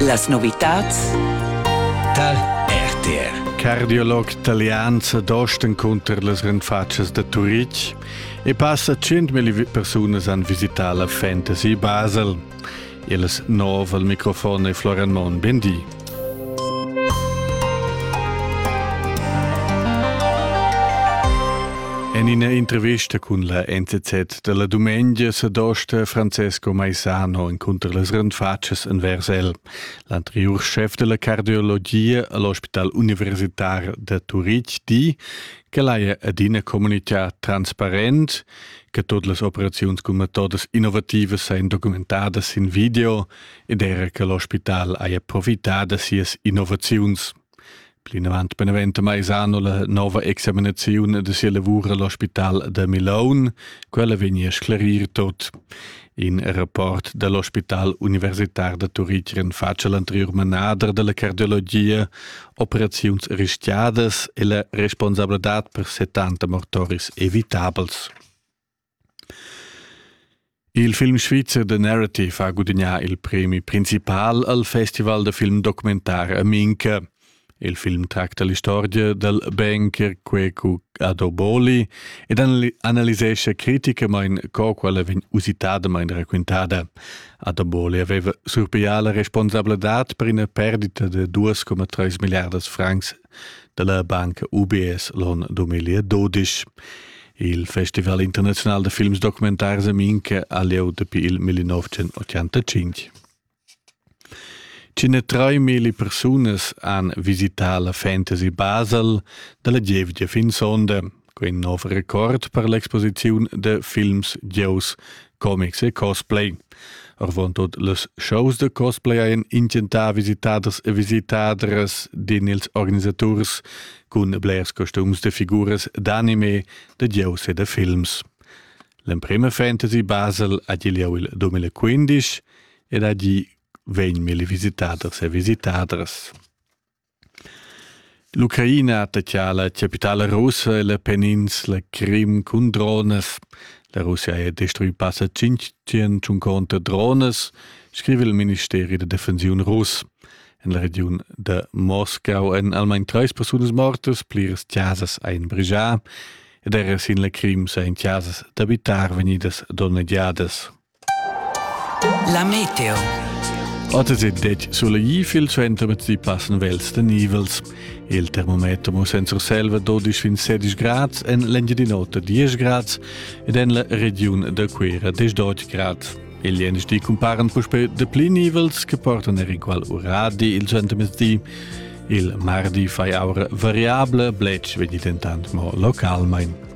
Las novitats tal RTR. Cardiolog talian s'adosten cunter las renfatschas da Turitg e passa 100.000 persunas han visità la Fantasy Basel. Il nov al microfon è Florian Monn. Ben di. En ina intervista cun la NTZ dalla dumengia sa dosta Francesco Maisano encunter las renfatschas envers el. L'anteriur chef della cardiologia all'Hospital Universitar da Turitg di che l'haja adina comunicà transparent, che tot las operaziuns cun metodas innovativas sein documentadas in video ed era che l'ospital haja profità da sias innovaziuns. Plinavant beneventa Maisano la nova examinaziun da sia lavur all'ospital da Milaun. Quella vegni a sclarir tot. In rapport dall'ospital universitar da Turitg fatg l'anterior manader dalla cardiologia, operaziuns rischiadas e la responsabladad per 70 mortoris evitabels. Il film svizzer The Narrative ha gudagnà il premi principal al festival da film documentar a Minca. Il film tracta l'istorgia dal banker Kweku Adoboli ed analisescha criticamain co quella vegn usitadamain raquintada. Adoboli aveva surpiglià la responsabladad per ina perdita da 2,3 milliardas francs da la banca UBS l'on 2012. Il Festival internazional da films documentars a Minca ha lieu dapi il 1985. Cine 3000 persunas han visità la Fantasy Basel dalla gievgia fin sonda. Quei nov record per l'exposiziun de films, gieus, comics e cosplay. Arvontot les shows de cosplay ein intentà visitaders e visitadras din ils organisaturs cun blers costums de figuras d'anime, de gieus e de films. L'emprema fantasy Basel ha lieu il 2015 ed a gi vegn mille visitaders e visitadras. L'Ucraina dettia la chapitala russa e la peninsula Crim cun dronas. La Russia ha destruì passa tschintg dronas, scriva il ministeri da defensiun russ. En la regiun da Moscau èn almain trais persunas mortas, pliras chasas ein brigià ed era sin la Crim sain chasas d'abitar vegnidas donnegiadas. La meteo. Otters il detg sulegì fil center met di passen vels de nivels. Il termometer mo senza selva 12 fin 16 grads en l'Engiadin'Ota 10 grads ed en la regiun de Cuira 18 grads. Il jenisch di cumparen puspe de pli nivels che portan er equal uradi il centermezdi. Il mardi fai aura variable, blec vegni dentant mo localmein.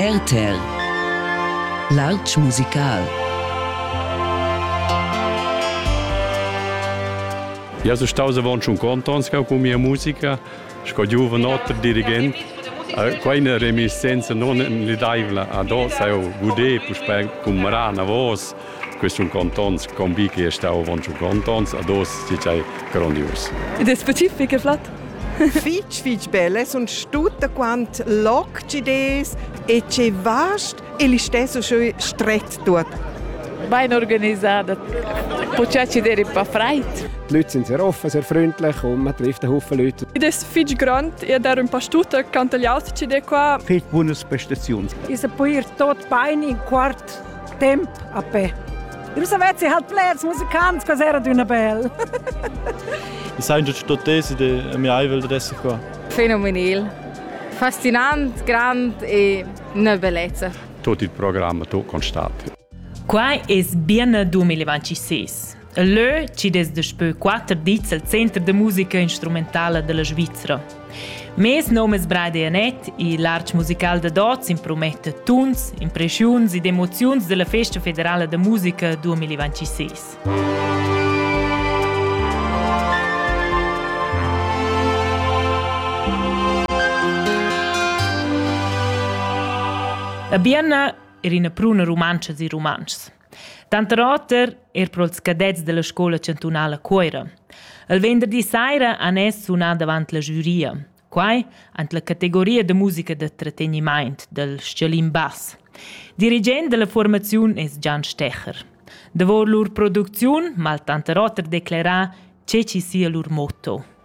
RTL L'artg musical Eu sun staus avant schon contents con mia musica sco giuven oter dirigent. Quai è una reminiscenza non nedaivla ad oss, eu gudé puspè cum Rana Vos, Questi sun contents, convi che è stau avon schon contents, ad os si sei grandios. Ed è specific e flat? fitch fitch belle sun tutta quant loccides e che vast e li stesso schön stret tut. Ben organisato. Počači der pa freit. Die Leute sind sehr offen, sehr freundlich und man trifft einen Haufen Leute. Ed è fitch grande, io dar un po' stuta quanto gli altri di qua. Fitch buonas prestazioni. Io può ir tot bein in quart temp a pe. Eu savessi halt blers musicants, quas era d'üna bel. I sain già tutt tesi de mia aivel da esser qua. Fenomenal. Fascinant, grand e una bellezza. Tot il programma tu constat. Quai es bienne 2026. Leu chi'd es daspö quatter dis al Center da musica instrumentala della Svizra. Mes nom es Brady Annett e l'art musical dad hoz imprometta tuns, impreschiuns ed emoziuns della Festa federala da musica 2026. A Bienna er ina pruna rumantscha e rumantschs. Tanter oter er pro ils cadets della scoula chantunala Cuoira. Il venderdi saira han es sunà davant la giuria. Quai ant la categoria da musica da tratteniment del Scialin Bass. Dirigent della formaziun es Gian Stecher. Davor lur producziun mal tanter oter declerà che ci sia lur motto.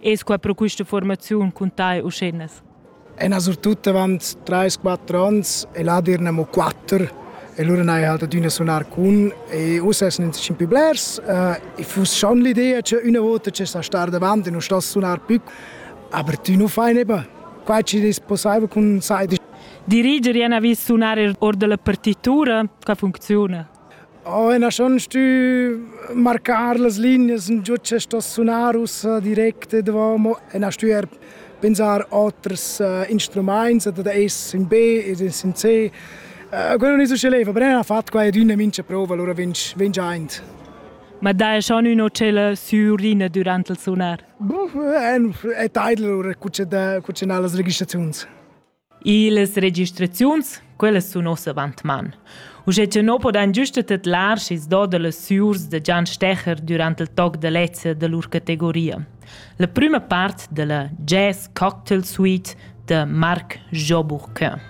Es qua pro quista formaziun cun tai uschennas? E surtut avant 3-4 ans e là dirn amo 4 e lura n'hai halt adüna sunar cun e uss es nin tschimpi blers uh, e fuss schon l'idea che üna vota che sa star davant e non sta sunar più aber tu nu fai neba quai ci is possibile cun sai diriger jena vis sunar or della partitura ca funziona Oh, ina schon stü marcar las lignas ün giò che sto sunar ussa direct e davo, mo ena stü eir pensar oters instrumaints, ad es ün be ed es ün C. Quella nun es usche leva, però ena fat quai ed üna mincha prova, alura vegn vegn aint. Ma daja schon ün o tschella sürlina dürant il sunar? Boh, è taidl lura cucciar las registraziuns. Illas registraziuns, quellas sun ossa avantman. Uschè cha no podan güsta tedlar schi's do da las süurs da Gian Stecher durant il toc da lezza da lur categoria. La prüma part da la Jazz Cocktail Suite da Marc Joburg.